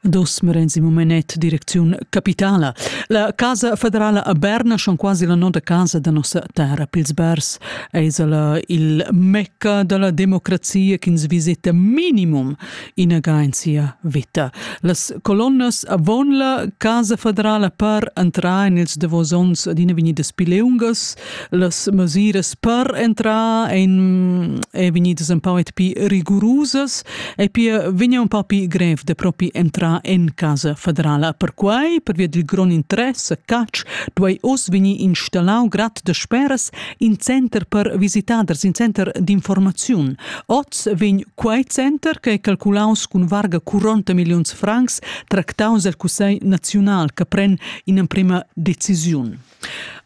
Dosmere in mumenet direcziun capitala. La casa federala a Berna, schon quasi la nona casa da nossa terra pils bers, es la il mecca della democrazia ch'ins visita minimum inaga in sia vita. Las colonnas avon la casa federala per entrar in ils davos ons d'ina venidas pileungas Las mesiras per entrar ein, ein vegnidas un pau pi rigurusas e pia vegna un pau pi grev de propi entrar en casa federala. Perquai, per via dil grond interesse, CAC duei oz vegnir installau grad de speras in center per visitaders, in center d'informaziun. Oz vegn quei center, che è calculaus cun varga 40 millions francs, tractaus al Cussegl nazional, che pren in emprema decisiun.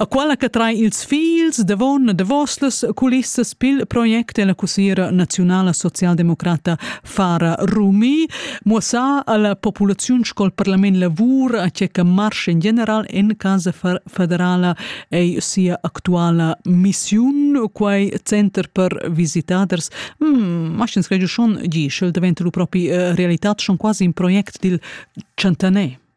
A quella che trai ils figls davon davos las culissas pil project la cussiera naziunala socialdemocrata Fara Rumi muossa alla populaziun sco il parlament lavur a che marsch in general en casa federala ei sia actuala missiun quei center per visitaders mm, ma scens credo schon gi schel diventa lu propi eh, realità schon quasi in project dil Chantanet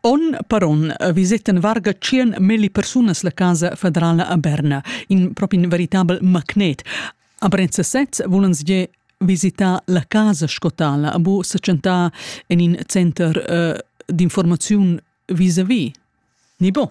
Onn per onn visettan varga tschien milli persunas la casa federala a Berna, in propi in veritabel magnet. A Brenza sez vulan gie visitar la casa scotala, bu secentà en in center uh, d'informaziun vis-a-vis. Ni bo?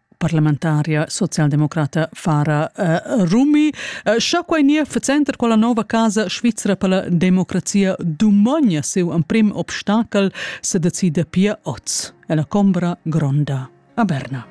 parlamentaria socialdemocrata Fara uh, Rumi. Uh, scha quai nia facenter quella nova casa Svizzera per la democrazia dumogna seu emprim obstakel se decida pia oz, e la combra gronda a Berna.